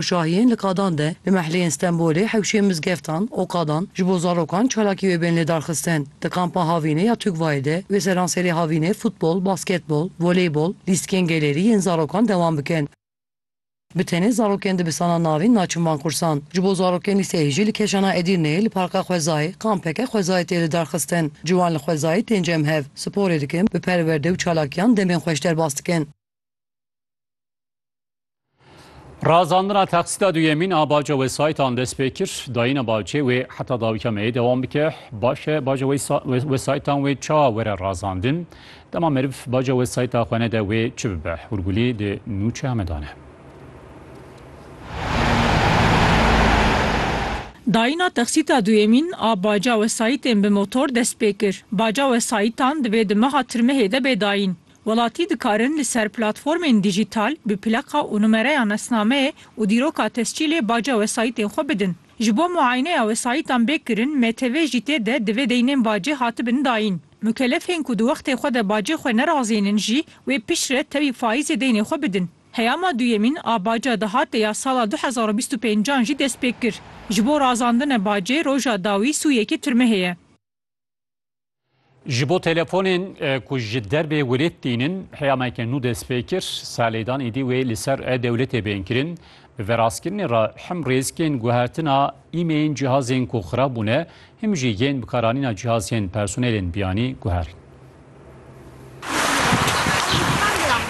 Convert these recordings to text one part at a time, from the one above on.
Şahiyên li qadan de li mehleyên Stenbolê, hewşiyên mizgeftan û qadan ji bo zarokan çalakî wê bên lêdarxistin. Di kampa Havînê ya Tugvayê de wê seranserê Havînê futbol, basketbol, voleybol, lîstikên gelêrî yên zarokan dewam bikin. Bi tenê zarokên dibistanan navîn naçin van kursan. Ji bo zarokên lîseyê jî li Keşana Edîrneyê li Parka Xwezayê kampeke xwezayê tê lidarxistin. Ciwan li xwezayê tên cem hev, sporê dikin, bi perwerde û çalakiyan demên xweş derbas dikin. Razandina teqsîda duyemîn a baca wesayîtan dest pê kir. Dayîna bacê wê heta dawîka me yê dewam bike. Baş e baca wesayîtan wê çawa were razandin. Dema meriv baca wesayîta xwe nede wê çi bibe? Hûrgulî di nûçe heme dane. Dayîna teqsîta duyemîn a baca wesayîtên bi motor dest pê kir. Baca wesayîtan divê di meha tirmehê de bê dayîn. Welatî dikarin li ser platformên dîjîtal bi plaka û numereya nasnameyê û dîroka tescîlê baca wesayîtên xwe bidin. Ji bo muayeneya wesayîtan bê kirin, MTV jî tê de divê deynên bacê hatibin dayîn. Mukelefên ku di wextê xwe de bacê xwe nerazênin jî wê piştre tevî faîzê deynê xwe bidin. Heyama duyemîn a baca di hatê ya sala du hezar û bîst û pênc an jî destpêkir. Ji bo razandine bacê roja dawî sû yekê tirmehê ye. Ji bo telefonên ku ji derbê welêt tînin heyameke nû dest pê kir, salêdan êdî wê li ser e-dewletê bên kirin. Bi verastkirinê re him rêzikên guhertina îmeyên cihazên ku xirab bûne, him jî yên bikaranîna cihazên personelên biyanî guherin.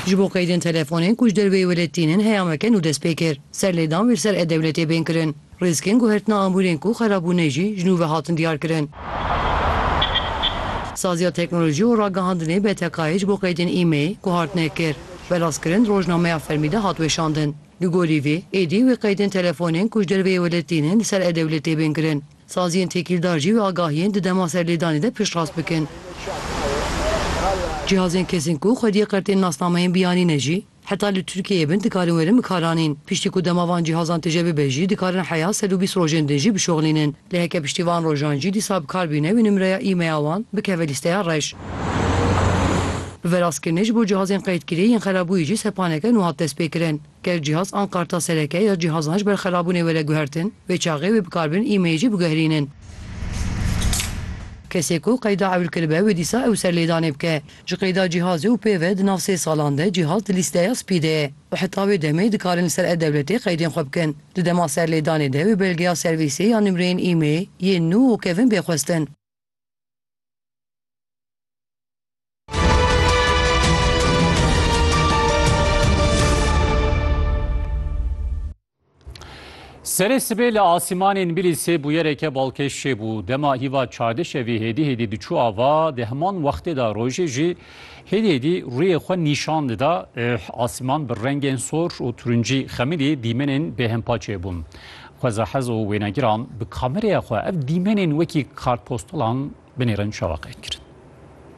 Ji bo qeydên telefonên ku ji derbê welêt tînin heyameke nû dest pê kir, serlêdan wê li ser e-dewletê bên kirin. Rîskên guhertina amûrên ku xerab bûne jî ji nû ve hatin diyarkirin. Saziya Teknolojî û Ragihandinê BTK'ê ji bo qeydên îmeyê guhartine kir. Belavkirin di rojnameya fermî de hat weşandin. Li gorî vê, êdî wê qeydên telefonên ku ji derveyê welêt tînin li ser e-dewlet tê bên kirin. Saziyên têkîldar jî wê agahiyên di dema serlêdanê de piştrast bikin. Cihazên kesên ku xwediyê qertên nasnameyên biyanî ne jî Heta li Tirkiyeyê bin dikarin werin bikaranîn. Piştî ku dema van cîhazan tije bibe jî dikarin heya sed û bîst rojên din jî bişoxlînin. Lê heke piştî van rojan jî dîsa bikar bîne wê nimreya e-maila wan bikeve lîsteya reş. Bi vê rastkirinê ji bo cihazên qeydkirî yên xerabûyî jî sepaneke nû hat destpêkirin. Ger cihaz an karta sereke ya cihazan ji ber xerabûnê were guhertin, vê çaxê wê bikarbin e-mail jî biguherînin. Kesê ku qeyda ewil kiribe wê dîsa ew serlêdanê bike. Ji qeyda cîhazê û pê ve di nav sê salan de cîhaz di lîsteya spî de ye û heta wê demê dikarin li ser e-dewletê qeydên xwe bikin. Di dema serlêdanê de wê belgeya servîsê ya nimreyên îmê yên nû û kevin bê xwestin. Serê sibê li asîmanê Nbîlîsê bûyereke balkêş çêbû. Dema hîva çardeh şevî hêdî hêdî diçû ava, di heman wextê de rojê jî hêdî hêdî rûyê xwe nîşan dida. Asîman bi rengên sor û turincî xemilî dîmenên bêhempa çêbûn. Xwezahez û wênegiran bi kameraya xwe ev dîmenên wekî kartpostalan binêrin şewaqek kirin.